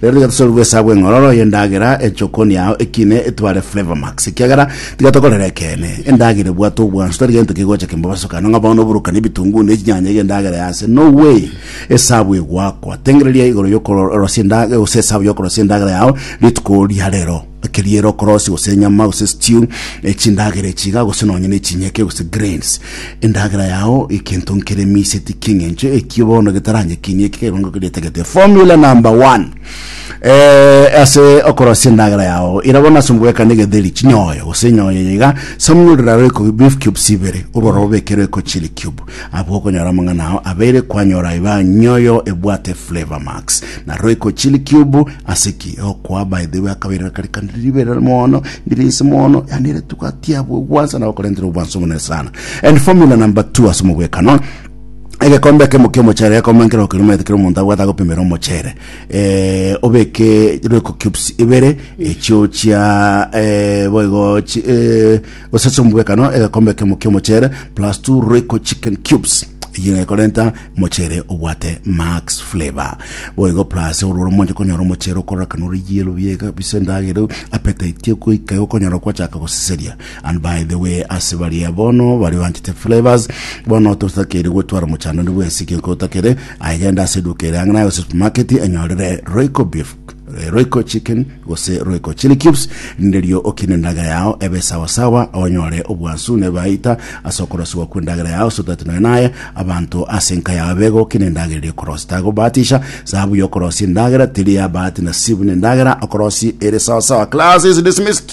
Rero tiga tosorwe gw'esabu eng'ororo y'endagera echokonia ao ekine etware Flavour Max, ekiagera tiga tokorere ekeene. Endagera ebwate obwansu, tari gento kegocha kembobaso kane ng'a bono oborokani ebitunguu na echinyanya ige endagera ya ase. No way! Esabu egoakwa. Tengereria igoro y'okorosia endag gose esabu y'okorosia endagera yao rituko ria rero. keria ere okorosia gose enyama gose stew echindagera echi iga gose nonye na echinyeke gose grains endagera yao ekento nkere miseti king'encho ekio bono getaranyekinie eki kegongo keria etagete formula number one eh, ase okorosia endagera yao ira bono ase omogwekana egetheri chinyoyo gose enyoyo eye iga samunyurira roiko beef cubes ibere orwara obeke roiko chili cube abwo okonyora amang'ana ao abeire kwanyora iba nyoyo ebwate flavor max Na roiko chili cube ase ki okwa by the way akabere akari kandi ribere mono ndirinse mono yani ile tukatia bwe gwansa na okorentera obwanso mune sana and formula number 2 ase mobwekano egekombe kemo kia omochere egekombe nkero okirumete kero omonto abwate agopimera omochere eh, obeke roiko cubes ibere echio chia eh, boigo chi- eh, Gose sombwekano egekombe kemo ki'omocheere plus two Royco chicken cubes eyio ekorenta mocheere obwate max flavour boigo plus ororo mwanche konyora omocheere okororokana ore yellow biega bise endagera appetite egoika igo okonyora kwachaka goseseria and by the way ase baria bono baria banchete flavours bono totakeire gwetwara mochando onde bwensi egento otakere aye genda ase eduka ere ang'e naye gose supermarket enyorere Royco beef eh, Royco Chicken gose Royco Chili Cubes, nderio okine endagera yao ebe sawa sawa, onyore obwansu nebaita ase okorosigwa kw'endagera yao, so that nonya naye abanto ase enka yao begokina endagera eria okorosi. Tagobahatisha, sababu ya okorosia endagera teri ya bahati nasibu, ne endagera okorosi ere sawa sawa. Class is dismissed.